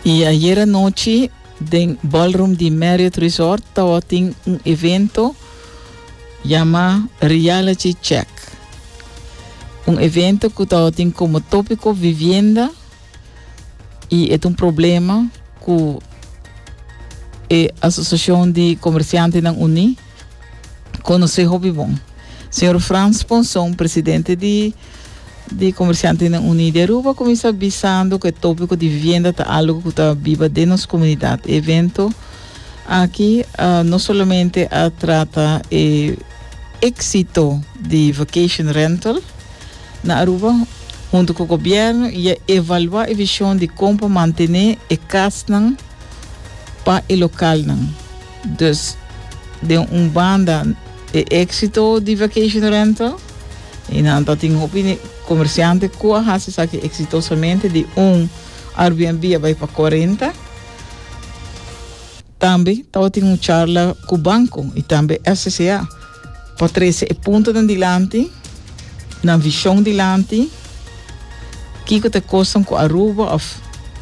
Y ayer anochi den ballroom di Marriott Resort tawa tin un evento llama Reality Check. Un evento cu tawa tin como tópico vivienda y et un problema cu e Asociacion di Comerciantenan Uní conoce hopi bon. Señor Frans Ponson, presidente di di Comerciantenan Uní di Aruba cuminsa bisando cu e topico di vivienda ta algo cu ta biba den nos comunidad. E evento aki no solamente a trata e exito di Vacation Rental na Aruba, hunto cu gobierno y a evalua e vision di con pa mantene e casnan pa e localnan. Dus den un banda e exito di Vacation Rental. I nan ta tin hopi comerciante cu a haci esaki exitosamente, di un Airbnb a bai pa cuarenta. Tambe tabatin un charla cu banco y tambe FCCA pa trece e puntonan dilanti, nan vision dilanti, kico ta e cosnan cu Aruba of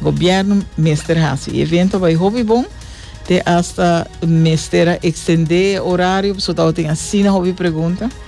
gobierno mester haci. E evento a bai hopi bon, te hasta mester a extende e horario, pasobra tabatin asina hopi pregunta.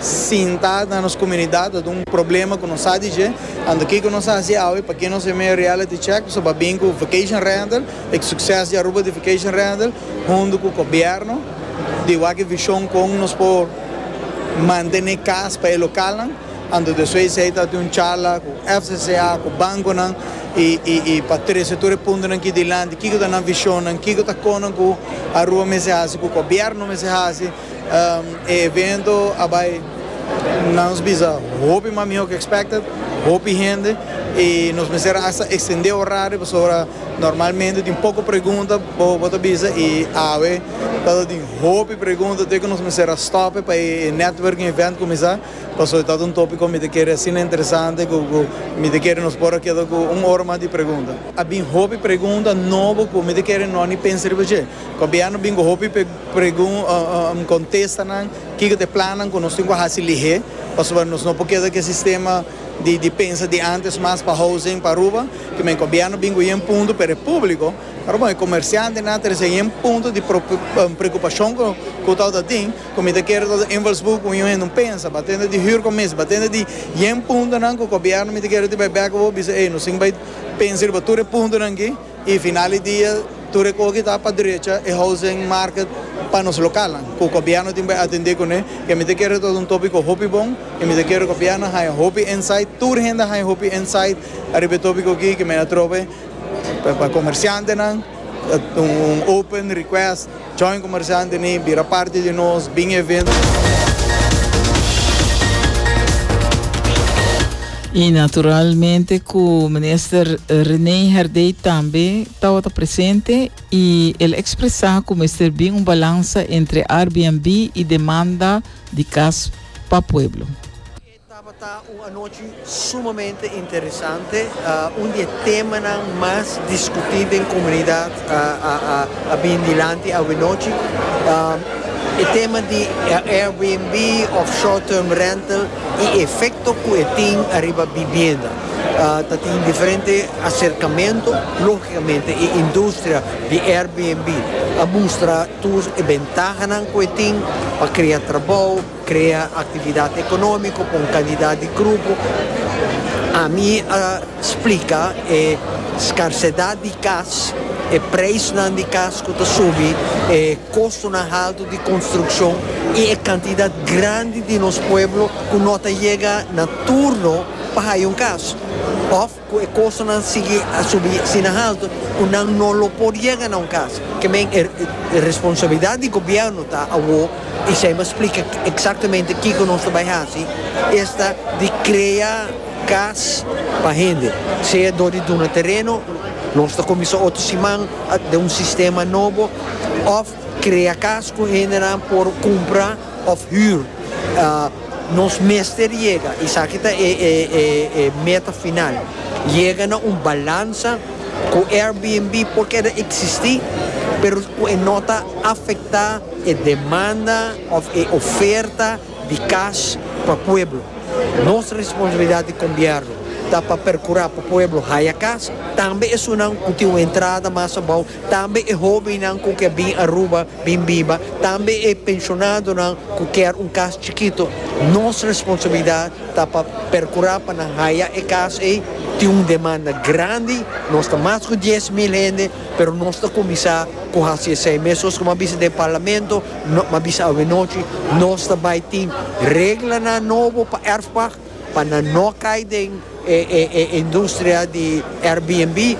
Sinta na nos komunidat ta un problema ku nos sa di dje, anto kiko nos a hasi awe? Pakiko nos a mea reality check? Nos a pa bin ku vacation rental, e sukses di Aruba di vacation rental, huntu ku gobièrnu di wak vishon kon nos por mantené kas pa e lokalnan, anto despues di esei ta tin un charla ku FCCA, ku bankonan i pa trese tur e puntonan aki dilanti, kiko ta nan vishonnan, kiko ta konan ku Aruba mester hasi, ku gobièrnu mester hasi. E evento a bai na nos bisa hopi mas miho ke expected, hopi hende y nos mester hasta extende horario pasobra normalmente tin poco pregunta bo bo ta bisa y awe ta ta tin hopi pregunta to'e ke nos mester a stop pa e networking event cuminsa pasobra ta ta un topico mi ta kere asina interesante cu cu mi ta kere nos por a keda cu un ora mas di pregunta. A bin hopi pregunta nobo cu mi ta kere no ni pensa riba dje. Con bia a bin cu hopi Pregun, Kontesta nan kiko ta e plannan ku nos tin ku hasi lihé, pasobra nos no por keda ku e sistema di pensa di ántes mas pa housing pa Aruba. Kimin e gobièrnu bin ku yen punto, pero e públiko, pero bon e komersiantenan ta resién yen punto di preokupashon ku tabata ta tin, ku mi ta kere tabata un invalsburgo ku un hende un pensa. Ba tende di hür komis, ba tende di yen puntonan ku gobièrnu mi ta kere bai bèk ku bo, bisa, ey, nos tin ku bai pensa riba tur e puntonan akí. I final di dia tur e koki ta pa drecha e housing market pa nos lokalnan ku gobièrnu tin por atendé kuné. E mi ta kere ku ta un tópiko hopi bon i mi ta kere ku gobièrnu haña hopi insight, tur hende haña hopi insight ariba e tópiko aki ku mi a trobe pa komersiantenan un open request. Join Comerciante ni bira parti di nos bin evento. Y naturalmente cu minister René Herdey tambe tawata presente y el expresa cu mester bin un balansa entre Airbnb y demanda di cas pa pueblo. Tabata un anochi sumamente interesante. Un di e temanan mas diskutí den komunidat a bini dilanti awanochi. E tema di Airbnb òf short term rental i e efekto ku e tin ariba bibienda. Ta tin diferente aserkamentu. Lógikamente e industria di Airbnb a mustra tur e bentahanan ku e tin pa krea trabou, Krea aktividat ekonómiko pa un kantidat di grupo. Ami a splika e skarsedat di kas, e preisnan di kas ku ta subi, e kostonan haltu di konstrukshon i e kantidat grandi di nos pueblo ku no ta yega na turno pa haya un kas. Òf. Cu e costonan sigui a subi asina halto cu nan no lo por yega na un cas. Ke men e responsabilidad di gobierno ta awo y esey m'a splica exactamente kico nos lo bay haci, esta di crea cas pa hende, sea door di duna tereno, nos ta cuminsa otro siman den un sistema nobo, of. Krea kas ku hendenan por kumpra òf hür. Nos mester yega, esaki ta e meta final, yega na un balansa ku Airbnb por keda eksistí, pero ku e no ta afektá e demanda òf e oferta di kas pa pueblo. Nos responsabilidat di Gobièrnu ta pa perkurá pa pueblo haya kas, tambe esunnan ku tin un entrada mas abou Tambe e hóbennan ku ke bin Aruba bin biba, tambe e penshonadonan ku kier un kas chikito, nos responsabilidat ta pa perkurá pa nan haya e kas ei. Tin un demanda grandi, nos ta mas ku dies mil hende, pero nos ta kuminsá ku hasi esei mes. Sos kuma bisa den parlamento, kuma bisa awenochi, nos ta bai tin reglanan nobo pa Erfpach pa nan no kai den e industria di Airbnb.